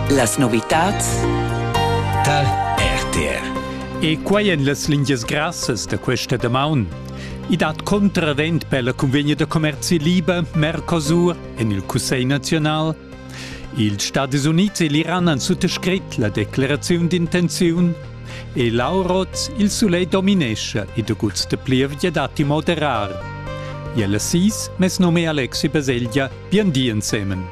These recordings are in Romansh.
Las novitads tar RTR. E quai en las lingias grassas da questa damaun. I dat contravent per la convegna da commerzi liber Mercosur en il Cussegl naziunal. Ils Stati Unids e l'Iran han suttascrit la decleraziun d'intenziun e l'Auroz il sulegl dominescha e da guts da plievgia datti moderar. Iel Assis, mes nome Alexi Baselgia Bien di ensemen.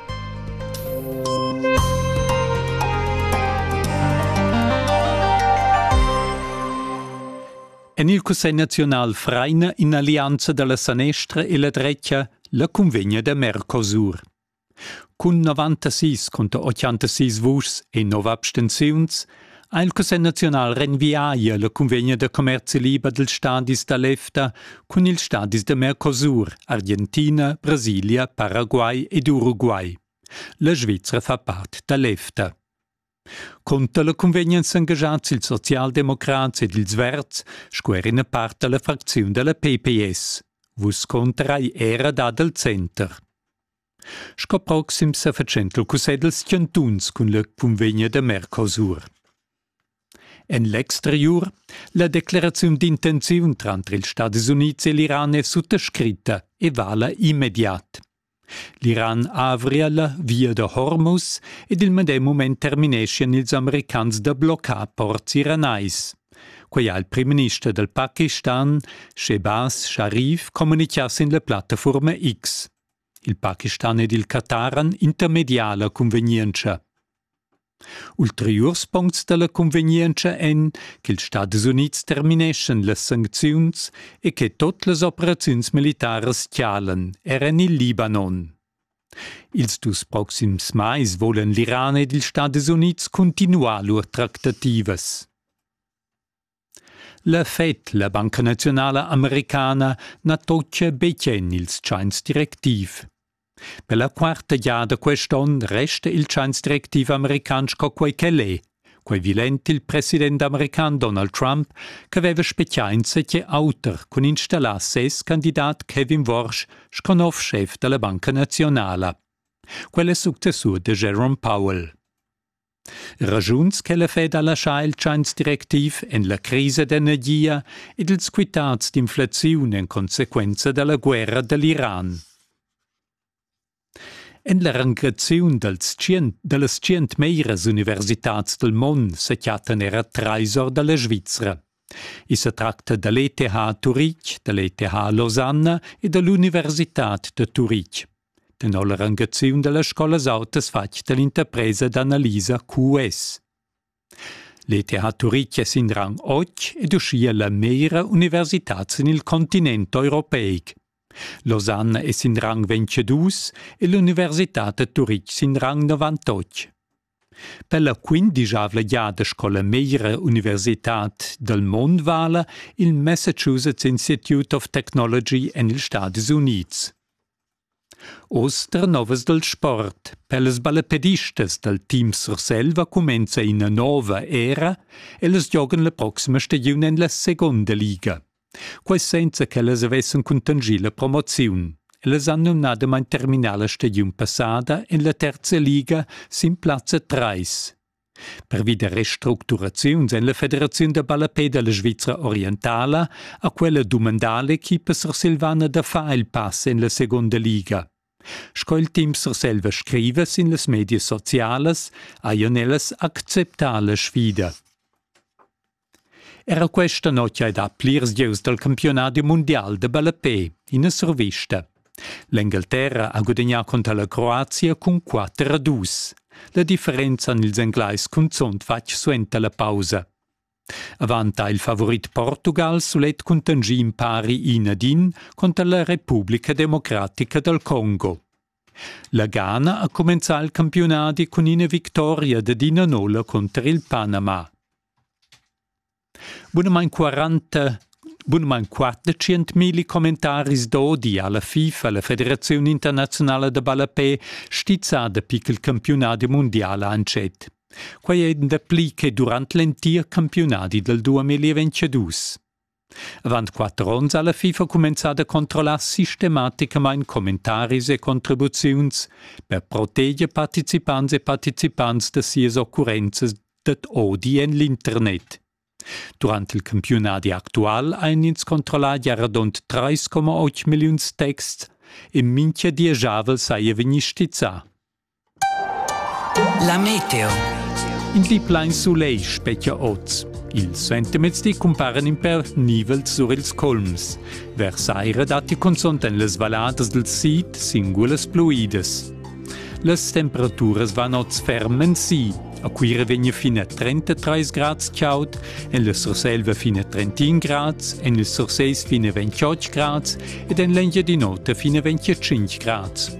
En il Cussegl naziunal fraina in'allianza da la sanestra e la drecha la cunvegna da Mercosur. Cun 96 conter 86 vuschs e 9 abstenziuns ha il Cussegl naziunal renviaia la cunvegna da commerzi liber dils stadis da l'EFTA cun ils stadis da Mercosur, Argentina, Brasilia, Paraguay ed Uruguay. La Svizra fa part da l'EFTA. Conter la cunvegna èn s'engagiads ils socialdemocrats ed ils verds sco er ina part da la fracziun da la PPS. Vus conterai era dad al center. Sco proxim sa fatschenta cussegl skiantuns cun le cunvegna da Mercosur. En l'exteriur la decleraziun d'intenziun tranter ils Stati Units e l'Iran è suttascritta e vala immediat. L'Iran avria la via da Hormuz ed il medem mument termineschian ils americans da bloccar ports iranais. Quai ha il primminister dal Pakistan, Shehbaz Sharif, communicà sin la plattafurma X. Il Pakistan ed il Qatar han intermediala cunvegnientscha. Ulteriurs puncts da la cunvegnientscha èn ch'ils Stadis Unids termineschan las sancziuns e che tut las operaziuns militaras chalan er en il Libanon. Ils dus proxims mais volan l'Iran ed ils Stadis Unids cuntinuar lur tractativas. La Fed, la banca naziunala americana, na toccia betg en il tschains directiv. Per la quarta giada quest onn resta il tschains directiv american sco quai ch'el è. Quai vilent il president american Donald Trump ch'aveva spezià insatge auter cun installar ses candidat Kevin Warsh sco nov schef da la banca naziunala. Quel è successur da Jerome Powell. Ragiuns che la Fed ha laschà il tschains directiv en la crisa d'energia ed ils quitads d'inflaziun en consequenza da la guerra da l'Iran. En la rangaziun dals tschient, da las tschient meras universitads dal mond sa chattan era trais or da la Svizra. I sa tracta da l'ETH Turitg, da l'ETH Losanna e da l'Universitad da Turitg. Tenor la rangaziun da las scolas autas fatg da l'interpresa d'analisa QS. L'ETH Turitg è sin rang 8 ed uschia la meglra universitad sin il continent europeic. Losanna è sin rang 22 e l'universitad da Turitg sin rang 98. Per la quindischavla giada scola meira Universitad dal mond vala il Massachusetts Institute of Technology en ils Stadis Unids. Oz novas dal sport. Per las ballepedistas dal Team Surselva cumenza ina nova era e las giogan la proxima stagiun en la seconda liga. quai senza ch'ellas avessan cuntanschì la promoziun. Ellas han numnadamain terminà la stagiun passada en la terza liga sin plazza 3. Pervi da restructuraziuns en la Federaziun da ballapè da la Svizra orientala ha quella dumandà l'equipa sursilvana da far il pass en la segunda liga. Sco il team Surselva scriva sin las medias socialas, hajan ellas acceptà la sfida. Era questa notg hai dà plirs gieus dal campiunadi mundial da ballapè ina survista. L'Engalterra ha gudagnà cunter la Croazia cun 4 a 2. La differenza han ils Englais cunzunt fatg suenter la pausa. Avant ha il favorit Portugal sulet cuntanschì in pari in ad in cunter la Repubblica Democratica dal Congo. La Ghana ha cumenzà il campiunadi cun ina victoria dad ina nolla cunter il Panama. Bunamain quaranta bunamain quattrocentmilli commentaris d'odi ha la FIFA, la Federaziun internaziunala da ballapè, stizzà dapi ch'il campiunadi mundial ha entschet. Quai è dapli che durant l'entir campiunadi dal 2022. Avant quatter onns ha la FIFA cumenzà da controllar sistematicamain commentaris e contribuziuns per proteger participants e participants da sias occurrenzas dad odi en l'internet. Durant il campiunadi actual ein ins controllà giaradont 3,8 milliuns texts e mintga dieschavel saja vegni stizzà. La meteo. In pli plein sulegl specchia oz. Ils sentimezdi cumparen in per nivels sur ils colms. Vers saira datti cunzont en las valladas del sid singulas pluidas. Las temperaturas van oz ferm en si. A Cuira vegna fino a 33 grads chaud, en la Surselva fino a 31 grads, en il Surseis fino a 28 grads ed en l'Engiadin'Ota fino a 25 grads.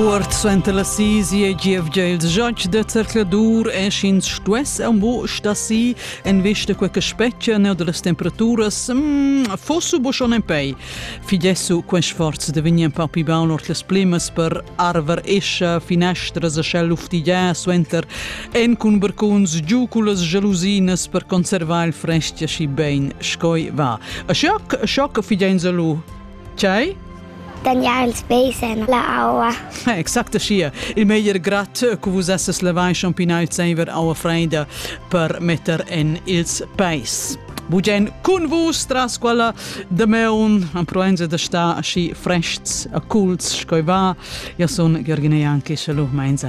Cuort suenter la sisi e gievgia il giatsch da zercladur e sch'ins stuess am bo sta si en vista quei che specchia neu dallas temperaturas mm, fosse bo schon en pei. Fidesso quei sforz de vegnir pa pi baul ord las plimas per arver escha finestras a schel luftigia suenter En cun barcuns giu cullas gelusinas per conservar il frestg aschi bein scoi va. A schoc, a schoc fideins a lu. Tgei? Tagnar ils peis en la aua. Eh, exact sia. Il meglier grat che vus esses levai champinau il zeiver aua freida per metter en ils peis. Bugen cun vus tras quella de meun am proenza da sta aschi frests a culs scoi va. Ja sun Gergine Janke, schalu meinza.